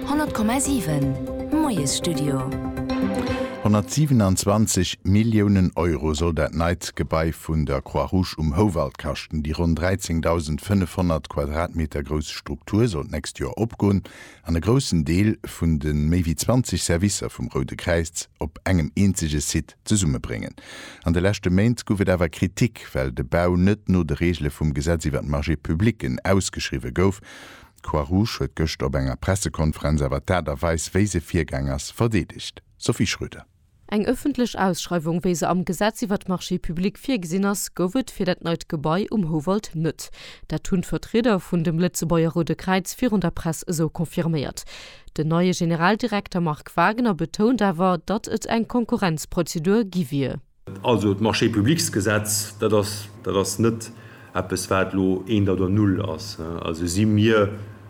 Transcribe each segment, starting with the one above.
100,7 Moiesstudio. 127 Milliounen Euro soll dat neit Gebai vun der Croix-Rouge um Houwald kaschten. Déi ronn 13.500 Quadratmeter grouss Struktur soll d'nächst Joer opgoen an e groussen Deel vun de méi wéi 20 Servicer vum Roude Kräiz op engem eenzege Site zesummebréngen. An de leschte Méint guff et awer Kritik, well de Bau net no de Regele vum Gesetz iwwer d'Marchés publics ausgeschriwwe gouf, D'Croix-Rouge huet gëschter op enger Pressekonferenz awer d'Aart a Weis, wéi se virgaang ass, verdeedegt. Sophie Schröder. Eng ëffentlech Ausschreiwung, wéi se am Gesetz iwwert d'Marchés publics virgesinn ass, gouf et fir dat neit Gebai um Houwald net. Dat hunn d'Vertrieder vun dem Lëtzebuerger Roude Kräiz virun der Press esou confirméiert. Den neie Generaldirekter Marc Wagener betount awer, datt et eng Konkurrenzprozedur gi wier. Also d'Marché-publics-Gesetz, dat ass, dat ass net eppes, wat elo eent oder null ass. Also si mir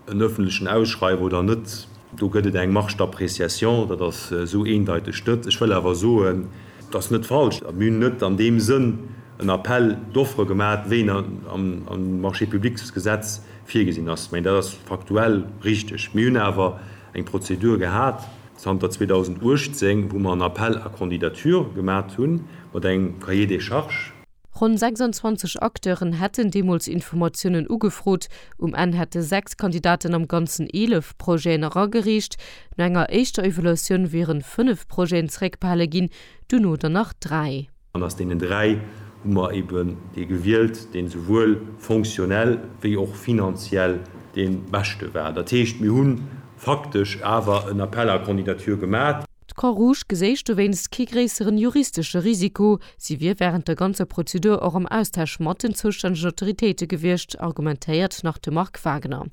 en öffentlechen Ausschreiwer oder net, do gëtt et eng Marge d'appréciation, dat ass esou eendeiteg net. Ech wëll awer soen, et ass net falsch, mir hunn net an deem Sënn en Appel d'offres gemaat, wéi en am Marché-publics-Gesetz virgesinn ass. Mä dat ass faktuell richtig. Mir hunn awer eng Prozedur gehat. Zanter 2018, wou mer en Appel à candidatures gemat hunn, mat engem Cahier des charges. Ronn 26 Acteuren hätten deemools Informatiounen ugefrot. Um Enn hätte 6 Kandidaten am Ganzen 11 Projeten eragereecht. No enger éischter Evaluatioun wieren 5 Projeten zeréckbehale ginn, duerno der nach 3. An aus deenen dräi hu mer eben dee gewielt, deen esouwuel fonctionnel wéi och finanziell dee beschte war. Dat heescht, mir hu faktesch awer en Appel à candidatures gemat. D'Croix-Rouge geséich dowéinst kee gréisseren juristesche Risiko. Si wier während der ganzer Prozedur och am Austausch mat den zoustännegen Autoritéite gewiescht, argumentéiert nach de Marc Wagner.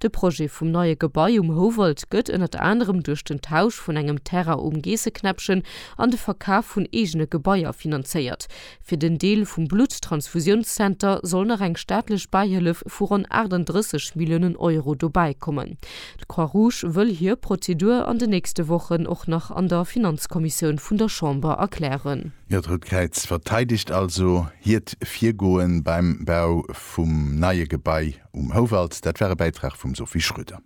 De Projet vum neie Gebai um Houwald gëtt ënnert anerem duerch den Tausch vun engem Terrain um Geesseknäppchen an de Verkaf vun eegene Gebaier finanzéiert. Fir den Deel vum Blutttransfusiounszenter soll nach eng staatlech Bäihëllef vu ronn 38 Milliounen Euro dobäi kommen. D'Croix-Rouge wëll hir Prozedur an den nächste Wochen och nach an der Finanzkommissioun vun der Chamber erklären. D'Rout Kräiz verteidegt also hiert Virgoe beim Bau vun. vum neie Gebai um Houwald. Dat war e Bäitrag vum Sophie Schröder.